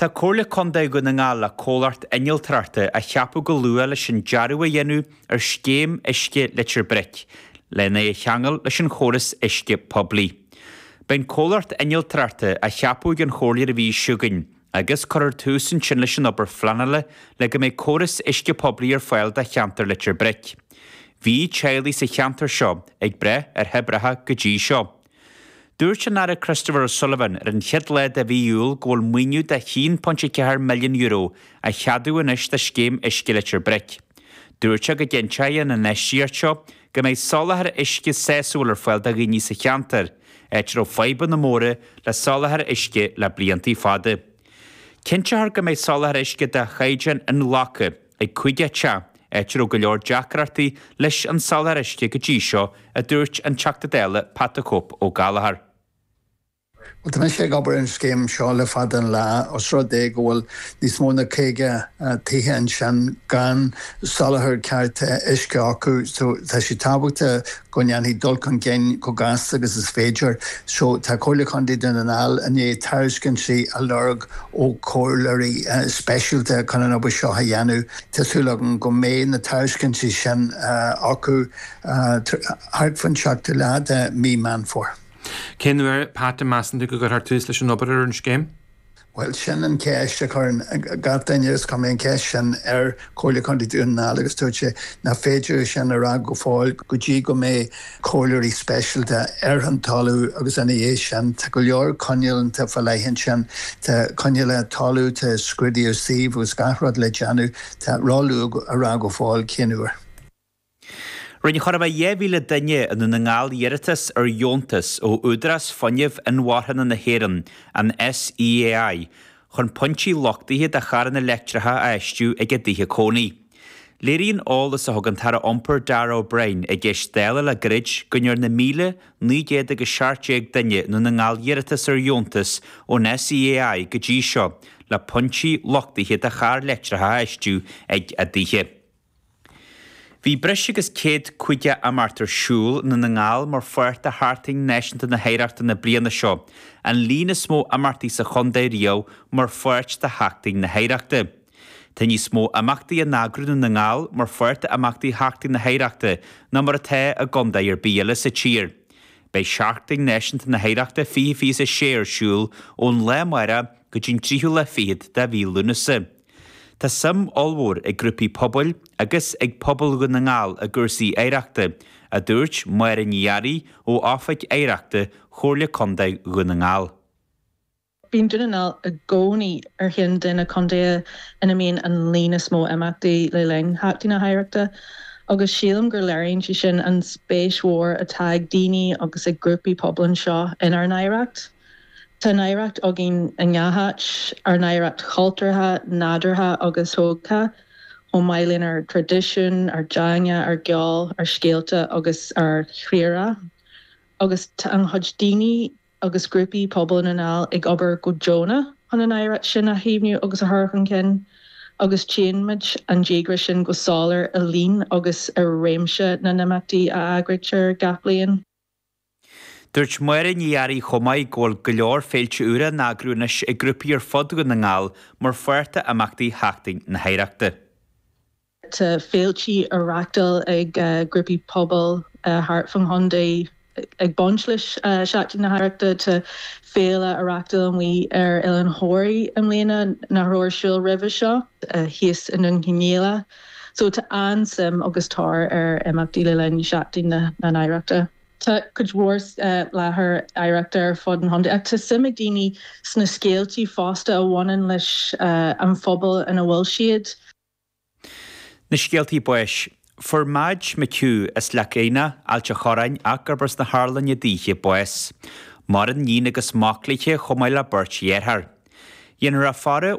Tá Comhairle Contae Dhún na nGall le comhlacht innealtóireachta a cheapadh go luath leis an dearbhú a dhéanamh ar scéim uisce Leitir Bric, lena cheangal leis an chóras uisce poiblí. Beidh an comhlacht innealtóireachta á cheapadh ag an Chomhairle an mhí seo chugainn, agus cuirfear tús ansin leis an obair phleanála le go mbeidh córas uisce poiblí ar fáil do cheantar Leitir Bric. Bhí teaghlaigh sa cheantar seo ag brath ar thoibreacha go dtí seo. Dúirt an tAire Christopher O'Sullivan ar an chéad lá de mhí Iúil go bhfuil maoiniú de €1.4 milliún á cheadú anois do scéim Uisce Leitir Bric. Dúirt sé go gcinnteoidh an infheistíocht seo go mbeidh soláthar uisce sásúil ar fáil do dhaoine sa cheantar, áit a raibh fadhbanna móra le soláthar uisce le blianta fada. Cinnteofar go mbeidh soláthar uisce de chaighdeán inghlactha. ag cuid ceantar, áit a raibh go leor deacrachtaí leis an soláthar uisce go dtí seo, a dúirt an Teachta Dála Pat the Cope Ó Gallchóir. Bhuel, tá mise ag obair ar an scéim seo le fada an lá. Os rud é go bhfuil níos mó ná caoga tithe ansin gan soláthar ceart uisce acu, tá sé tábhachtach go ndéanfaí dul chun cinn chomh gasta agus is féidir. Tá Comhairle Contae Dhún na nGall i ndiaidh tairiscintí a lorg ó chomhairleoirí speisialta chun an obair seo a dhéanamh. Tá súil agam go mbeidh na tairiscintí sin acu thart fán seachtú lá de mhí Meán Fómhair. Cén uair, Pat, a mheasann tú go gcuirfear tús leis an obair ar an scéim? Bhuel, sin an cheist a chuireann gach duine, agus chuir mé an cheist sin ar Chomhairle Contae Dhún na nGall agus dúirt sé nach féidir é sin a rá go fóill go dtí go mbeidh comhairleoirí speisialta ar an talamh agus ina dhiaidh sin, tá go leor coinníollacha fá leith ansin, tá coinníollacha talaimh, tá scrúdú suímh agus gach rud le déanamh, tá sé ró-luath a rá go fóill cén uair. Rinne chóir a bheith 2,000 duine i nDún na nGall iarratas ar dheontas ó Údarás Fuinnimh Inmharthana na hÉireann, an SEAI, chun pointí luchtaithe do charranna leictreacha a fheistiú ag a dtithe cónaí. Léiríonn eolas a thug an tAire Iompair Darragh O'Brien i gceist Dála le gairid go ndearna 1,917 duine i nDún na nGall iarratas ar dheontas ón SEAI go dtí seo le pointí luchtaithe do charranna leictreacha a fheistiú ag a dtithe. Beidh breis agus céad caoga imeacht ar siúl i nDún na nGall mar pháirt de Sheachtain Náisiúnta na hOidhreachta na bliana seo, an líon is mó imeachtaí sa chontae riamh mar pháirt de Sheachtain na hOidhreachta. Tá níos mó imeachtaí á n-eagrú i nDún na nGall mar pháirt d'imeachtaí Sheachtain na hOidhreachta ná mar atá i gcontae ar bith eile sa tír. Beidh Seachtain Náisiúnta na hOidhreachta fiche fiche a sé ar siúl ón lá amárach go dtí an tríú lá fichead de mhí Lúnasa. Tá suim ollmhór ag grúpaí pobail agus ag pobal Dhún na nGall i gcúrsaí oidhreachta, a dúirt Máire Ní Fhearraigh ó Oifig Oidhreachta Chomhairle Contae Dhún na nGall. Bíonn Dún na nGall i gcónaí ar cheann de na contaetha ina mbíonn an líon is mó imeachtaí le linn Sheachtain na hOidhreachta agus sílim gur léiríonn sé sin an spéis mhór atá ag daoine agus ag grúpaí pobail anseo inár n-oidhreacht. Tá an oidhreacht againn i ngach áit, ár n-oidhreacht chultúrtha, nádúrtha agus thógtha, chomh maith lenár dtraidisiún, ár dteanga, ár gceol, ár scéalta agus ár bhfiadhúlra. Agus tá an-chuid daoine agus grúpaí pobail i nDún na nGall ag obair go deonach chun an oidhreacht sin a chaomhnú agus a chur chun cinn, agus tchíonn muid an díograis sin go soiléir i líon agus i réimse na n-imeachtaí a eagraítear gach bliain. Dúirt Máire Ní Fhearraigh chomh maith go bhfuil go leor féilte úra á n-eagrú anois ag grúpaí ar fud Dhún na nGall mar pháirt d'imeachtaí sheachtain na hoidhreachta. Tá féiltí á reáchtáil ag grúpaí pobail thart fán chontae ag baint le seachtain na hoidhreachta. Tá féile á reáchtáil amuigh ar Oileán Thoraí i mbliana nach raibh ar siúl roimhe seo thíos i nDún Cionnaola. So tá an-suim agus tóir ar imeachtaí le linn Sheachtain na nOidhreachta. Tá cuid mhór láthair oidhreachta ar fud an chontae ach tá suim ag daoine sna scéaltaí fosta a bhaineann leis an phobal ina bhfuil siad. Na scéaltaí báis. Fuair Madge McHugh as Leac Eidhneach, Ailt a' Chorráin, ach gurb as na hArlainne daoithe, bás. Maireann níon agus mac léithe chomh maith le beirt dheartháir. Dhéanfar a faire